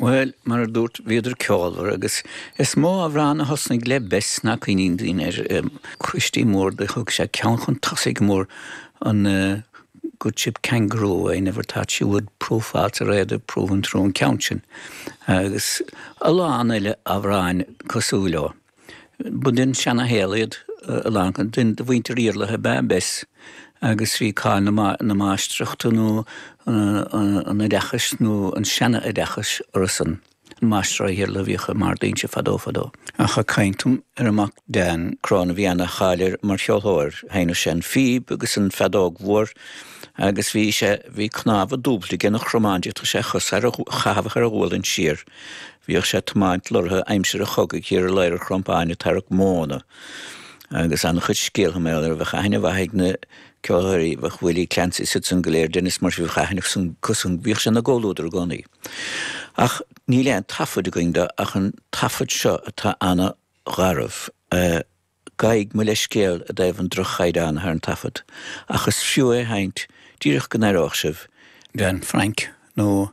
Bhuel, mar a dúirt, bhíodar ceolmhar agus is mó amhrán a thosnaigh le Bess ná cuimhníonn daoine air, Christy Moore, do thug sé ceann chun tosaigh go mór an Good Ship Kangaroo, I never thought she would prove false or either prove untrue an ceann sin, agus a lán eile amhráin cosúil leo. Ba den seanashaol iad a lán acu, de mhuintir Iarlaithe ab ea Bess, agus bhí cáil na máistreachta nó an oideachais, nó an seana-oideachais, orthusan. Máistrí Iarlaithe a bhíodh i mBarr d'Ínse fadó fadó. Ach ag caint ar a mac Dan Cron, bhí ana-cháil air mar cheolthóir. Sheinneadh sé an phíb agus an feadóg mhór agus bhí sé, bhí cnámha dúbailte aige ina chromáin, d'fhéadfadh sé a chos a chaitheamh thar a ghualainn siar Bhíodh sé ag tiomáint leoraithe aimsir an chogaidh thiar i Ladhar an Chrompáin ag tarrac móna agus an-chuid scéaltha mar gheall air, bheadh aithne mhaith ag na ceolthóirí, bheadh Willie Clancy is iadsan go léir, Denis Murphy, bheadh aithne acusan, bhíodh sé ina gcomhluadar i gcónaí. Ach níl aon taifead againn de ach an taifead seo atá an-gharbh. Gabhaidh mo leithscéal i dtaobh an droch-chaighdeáin atá ar an taifead ach is fiú é a sheinnt díreach go n-aireoidh sibh, Dan Frank nó.